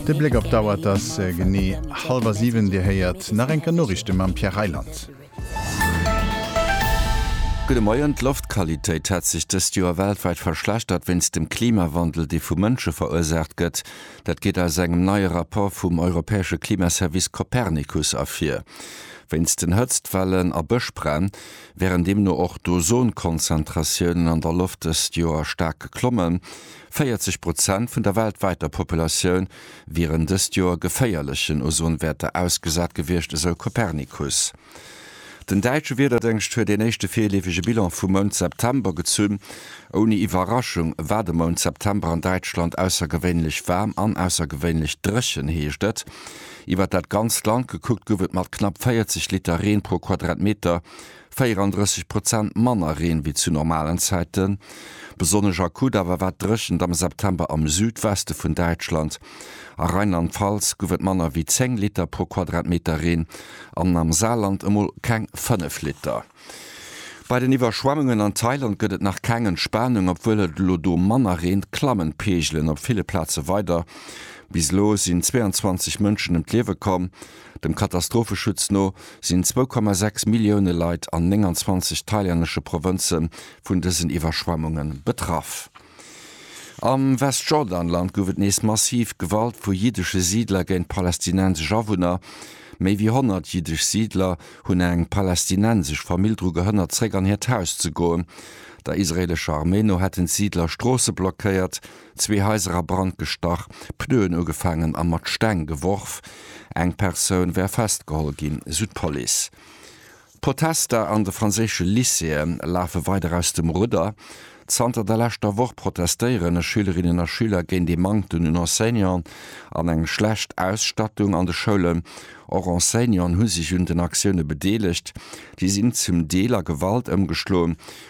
De Bléck op d'Auer, et ass genee hallwer siwen. Dir héiert nach eng Kéier Noriichte mam Pierre Reyland. Gudde Moien, D'Loftqualitéit hätt sech dëst Joer weltwäit verschlechtert wéinst dem Klimawandel, dee vu Mënsche verursaacht gëtt. Dat geet aus engem neie Rapport vum europäesche Klimaservice Copernicus ervir. Wéinst den Hëtztwellen a Bëschbränn wären deemno och d'Ozonkonzentratiounen an der Loft dëst Joer staark geklommen. 40 Prozent vun der weltwäiter Populatioun wieren dëst Joer geféierlechen Ozonwäerter ausgesat gewiescht, esou Copernicus. Den däitsche Wiederdéngscht huet een éischte virleefege Bilan vum Mount September gezunn. Ouni Iwwerraschung war de Mount September an Däitschland aussergewéinlech waarm an aussergewéinlech dréchen, heescht et. Iwwer dat ganzt Land gekuckt gouf et mat knapp 40 Liter Reen pro Quadratmeter 34 Prozent manner Reen wéi zu normalen Zäiten. Besonnesch akut awer war d'Dréchent am September am Südweste vun Däitschland. A Rheinland-Pfalz gouf et manner wéi 10 Liter pro Quadratmeter Reen an am Saarland emol keng 5 Liter. Bei den Iwwerschwemmungen an Thailand gëtt et nach keng Entspanung. Obwuel et elo do manner reent, klammen d'Peegelen op ville Plaze weider. Bis elo sinn 22 Mënschen ëm d'Liewe komm. Dem Katastropheschutz no sinn 2,6 Millioune Leit an 29 thailännesche Provënze vun dësen Iwwerschwemmunge betraff. Am Westjordanland gouf et nees massiv Gewalt vu jiddesche Siidler géint palästinensesch Awunner. Méi wéi 100 jiddesch Siidler hunn eng palästinensesch Famill dru gehënnert, zeréck an hiert Haus ze goen. Der israeelescher Arméi no hätten d'Siidler Stroosse blockéiert, Zwee Haiser a Brand gestach, Pneuen ugefaangen a mat Steng geworf. Eng Persoun wär festgeholl ginn, sou d'Police. D'Protester an de franséische Lycéeë lafe weider aus dem Rudder. Zanter der leschter Woch protestéiere Schülerinnen a Schüler géint ee Manktem un Enseignanten an eng schlecht Ausstattung an de Schoulen. Och Enseignanten hu sech un den Aktioune bedeelegt. Si sinn zum Deel a Gewalt ëmgeschloen,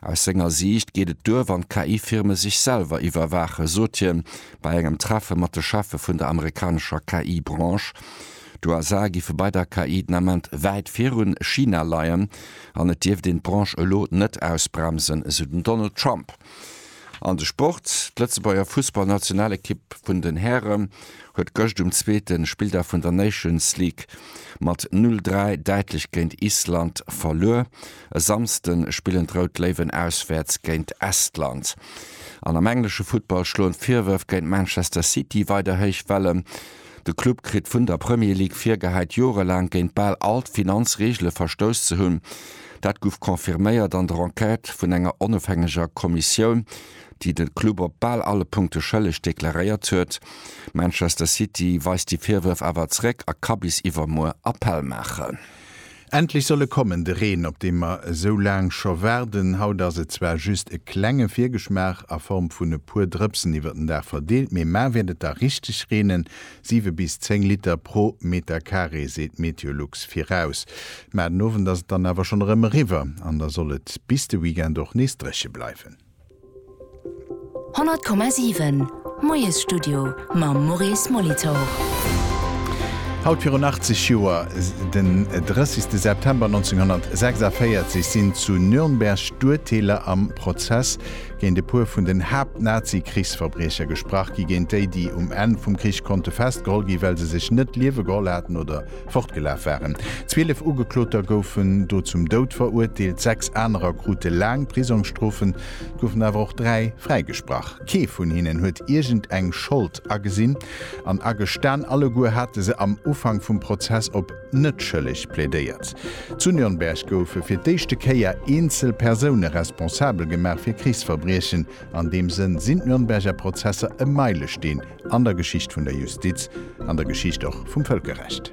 Aus senger Siicht geet et duer, wann d'KI-Firme sech selwer iwwerwaachen, sot hien bei engem Treffe mat de Cheffe vun der amerikanescher KI-Branche. D'USA giffe bei der KI den Ament wäit virun China leien an et dierft een d'Branche elo net ausbremsen, esou den Donald Trump. An de Sport, D'Lëtzebuerger Fussballnationalekipp vun den Hären huet gëscht um zweete Spilldag vun der Nations League mat 0, 3 däitlech géint Island verluer. E Samsden spillen d'Rout Léiwen auswäerts géint Estland. An am englesche Futtball schloen d'Virwërf géint Manchester City weider héich Wellen. De Club kritt vun der Premier League virgehäit, jorelaang géint bal all d'Finanzreegele verstouss ze hunn. Dat gouf confirméiert an der Enquête vun enger onofhängeger Kommissioun, déi de Club op bal alle Punkte schëlleg deklaréiert huet. Manchester City weist déi Virwërf awer zeréck a ka bis iwwermuer Appell maachen. Endlech soll e kommen, de Reen, op dee mer esou laang scho waarden. Haut ass et zwar just e klenge Virgeschmaach a Form vun e puer Drëpsen iwwer den Dag verdeelt, mee mar wäert et da richteg reenen, siwe bis zéng Liter pro Meter Carré, seet d'Meteolux viraus. Mar den Owend ass et dann awer schonn erëm eriwwer an da soll et bis de Weekend och nees dréche bleiwen. 100,7 Moiesstudio mam Maurice Molitor. Haut virun 80 Joer, den 30 September 1946, sinn zu Nürnberg d'Urteeler am Prozess géint e puer vun den Haapt-Nazi-Krichsverbriecher gesprach gi géint déi, déi um Enn vum Krich konnte festgeholl ginn, well se sech net d'Liewe geholl haten oder fortgelaf waren. Zwielef Ugekloter goufen do zum Doud verurteelt, sechs anerer krute laang Prisongsstrofen, et goufen awer och dräi fräigesprach. Kee vun hinnen huet iergend eng Schold agesinn an agestan, alleguer hate se am Ufank vum Prozess op net schëlleg plädéiert. Zu Nürnberg goufe fir d'éischte Kéier eenzel Persoune responsabel gemaach fir Krichsverbriechen. An deem Sënn sinn d'Nürnberger Prozesser e Meilesteen an der Geschicht vun der Justiz, an der Geschicht och vum Vëlkerrecht.